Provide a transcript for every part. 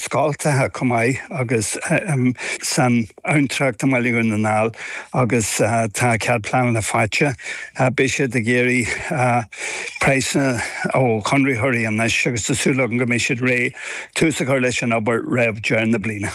scoltacha chomh maith agus san abhantrach i mBaile Dhún na nGall agus tá cead pleanála faighte. Beidh siad ag iarraidh praghsanna ó chonraitheoirí anois agus tá súil againn go mbeidh siad réidh tús a chur leis an obair roimh dheireadh na bliana.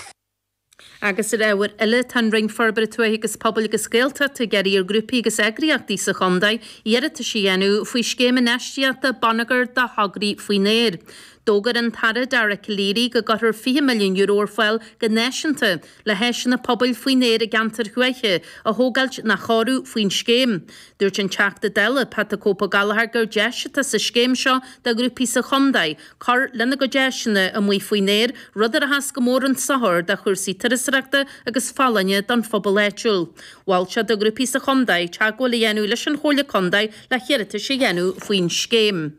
Agus ar ábhar eile, tá an Roinn Forbartha Tuaithe agus Pobail agus Gaeltachta ag iarraidh ar ghrúpaí agus eagraíochtaí sa chontae iarratais a dhéanamh faoi Scéim Infheistíochta Bonneagair do Thograí Faoin Aer. D'fhógair an tAire Dara Calleary go gcuirfear €20 milliún ar fáil go náisiúnta le háiseanna pobail faoin aer i gceantair thuaithe a thógáilt nó a chóiriú faoin scéim. Dúirt an Teachta Dála Pat 'The Cope' Ó Gallchóir gur deis atá sa scéim seo do ghrúpaí sa Chondae cur lena gcuid áiseanna amuigh faoin aer, rud a rachas go mór chun sochair do chúrsaí turasaireachta agus folláine don phobal áitiúil. Mhol sé do ghrúpaí sa Chondae teagmháil a dhéanamh leis an Chomhairle Condae le hiarratais a dhéanamh faoin scéim.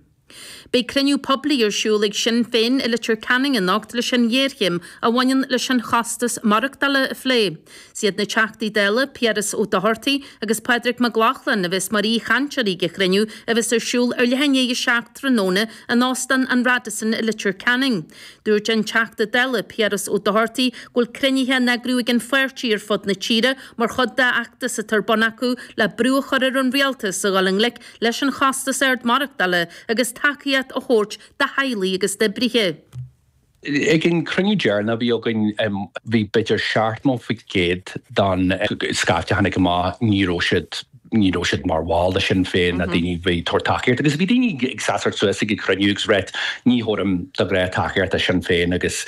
Beidh cruinniú poiblí ar siúl ag Sinn Féin i Leitir Ceanainn anocht leis an ghéarchéim a bhaineann leis an chostas maireachtála a phlé. Is iad na Teachtaí Dála Piaras Ó Dochartaigh agus Pádraig Mac Lochlainn a bheas mar aoichainteoirí ag an chruinniú a bheas ar siúl ar leath i ndiaidh a seacht tráthnóna in Óstán an Radisson i Leitir Ceanainn. Dúirt an Teachta Dála Piaras Ó Dochartaigh go bhfuil cruinnithe á n-eagrú ag an pháirtí ar fud na tíre mar chuid de fheachtas atá ar bun acu le brú a chur ar an Rialtas a dhul i ngleic leis an chostas ard maireachtála agus tacaíocht a thabhairt do theaghlaigh agus d'oibrithe. Ag an chruinniú deireanach a bhí againn, bhí b'fhéidir 70% den scaifte a tháinig amach, ní raibh siad, ní raibh siad mar bhall de Shinn Féin, ná daoine a bhí ag tabhairt tacaíocht agus bhí daoine ag seasamh suas ag an chruinniú agus ag ráit ní thabhairim de ghnáth tacaíocht do Shinn Féin agus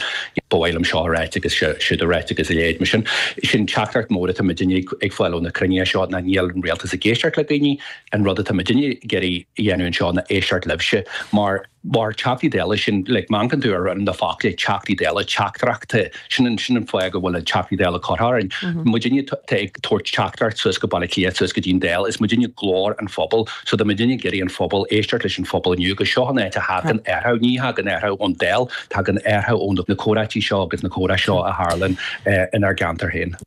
ba mhaith liom seo a ráit agus siúd a ráit agus a leithéid mar sin. Sin teachtaireacht mór atá muidinne ag fáil ó na cruinnithe seo ná níl an rialtas ag éisteacht le daoine, An rud atá muidinne ag iarraidh a dhéanamh anseo ná éisteacht libhse, mar mar Theachtaí Dála, sin, like, má amharcann tú ar na foclaí Teachtaí Dála, teachtaireachtaí, sin an, sin an fáth go bhfuil an Teachtaí Dála curtha orainn, muidinne atá ag tabhairt teachtaireacht suas go Baile Átha Cliath, suas go dtí an Dáil, is muidinne glór an phobail, so tá muidinne ag iarraidh an phobail, éisteacht leis an phobal inniu agus seo an áit a thagann athrú, ní thagann athrú ón Dáil, tagann athrú ó na comhráití seo agus na comhrá seo a tharlann inár gceantar féin.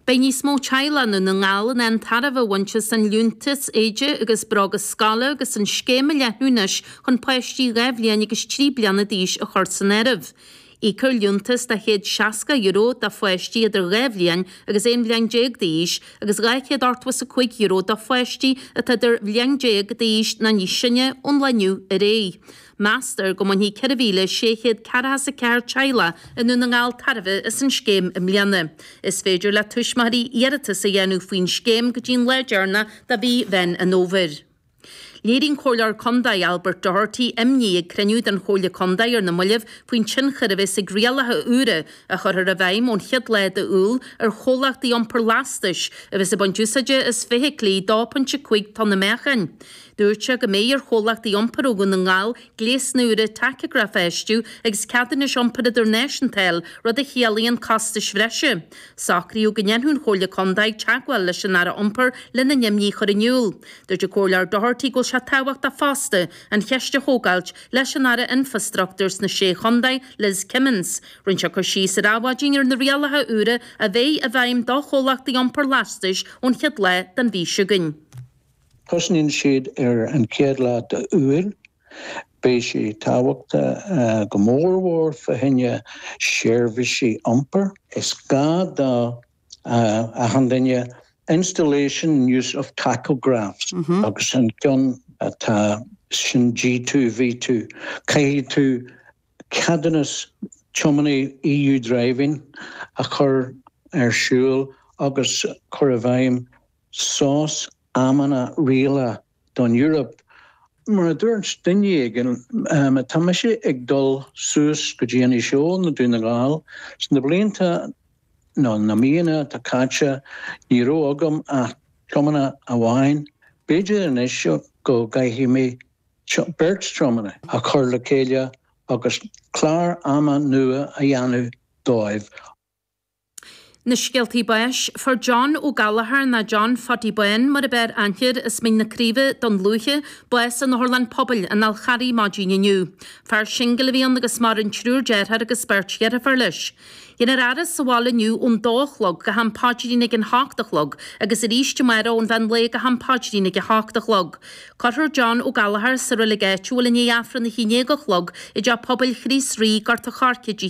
Beidh níos mó teaghlaigh i nDún na nGall in ann tairbhe a bhaint as an Liúntas Éide agus Bróga Scoile agus an Scéim á leathnú anois chun páistí 2 bhliain agus 3 bliana d'aois a chur san áireamh. Íocfar liúntas de €160 do pháistí idir 2 bhliain agus 11 bhliain d'aois agus €285 do pháistí atá dhá bhliain déag d'aois nó níos sine ón lá inniu ar aghaidh. Meastar go mbainfidh 4,644 teaghlach i nDún na nGall tairbhe as an scéim i mbliana. Is féidir le tuismitheoirí iarratas a dhéanamh faoin scéim go dtí'n lá deireanach de mhí Mheán an Fhómhair. Léirigh an Comhairleoir Contae Albert Doherty imní ag cruinniú den Chomhairle Contae ar na mallaibh faoin tionchar a bheas ag rialacha úra a chuirfear i bhfeidhm ón chéad lá de Iúil ar chomhlachtaí iompair lastais a bheas ag baint úsáide as feithiclí 2.5 tonna meáchain. Dúirt sé go mbeidh ar chomhlachtaí iompair ó Dhún na nGall gléasanna úra tacagraif a fheistiú agus ceadúnais iompair idirnáisiúnta a fháil, rud a chiallaíonn costais bhreise. Socraíodh go ndéanfadh an Chomhairle Contae teagmháil leis an Aire Iompair lena n-imní a chur in iúl. Dúirt an Comhairleoir Doherty go bhfuil sé tábhachtach fosta an cheist a thógáilt leis an Aire Infreastruchtúr sna Sé Chontae, Liz Kimmins. Rinne sé cur síos ar Adhmhaidin ar na rialacha úra a bheidh i bhfeidhm do chomhlachtaí iompair lastais ón chéad lá den mhí seo chugainn. Tosnaíonn siad ar an chéad lá d'Iúil. Beidh sé tábhachtach go mór mhór fá choinne seirbhísí iompair. Is gá do achan duine Installation and use of tachographs agus an ceann atá ansin G2, V2. Caithfidh tú ceadúnas tiománaí EU Driving a chur ar siúl agus cur i bhfeidhm sos, amanna rialta don Eoraip. Mar a dúirt duine éigin, má tá mise ag dul suas go dtí an Íseal nó Dún na nGall, ins na blianta, nó na míonna, atá caite, ní raibh agam ach tiománaí amháin, b'fhéidir anois go gcaithfidh mé beirt tiománaí a chur le chéile agus clár ama nua a dhéanamh dóibh. Na scéaltaí báis, Fuair John Ó Gallchóir, nó John Phaddy Bháin mar ab fhearr aithne air as Mín na Craoibhe, Dún Lúiche, bás in otharlann pobail an Fháil Charraigh maidin inniu. Fear singil a bhí ann agus maireann triúr dearthár agus beirt dheirfiúr leis. Déanfar é a fhaire sa bhaile inniu ón dó a chlog go ham páidrín ag an ocht a chlog agus arís amárach ón mheán lae go ham páidrín ag a hocht a chlog. Cuirfear John Ó Gallchóir sa reilig áitiúil i ndiaidh Aifreann a haon déag a chlog i dTeach Pobail Chríost Rí, Gort a Choirce, Dé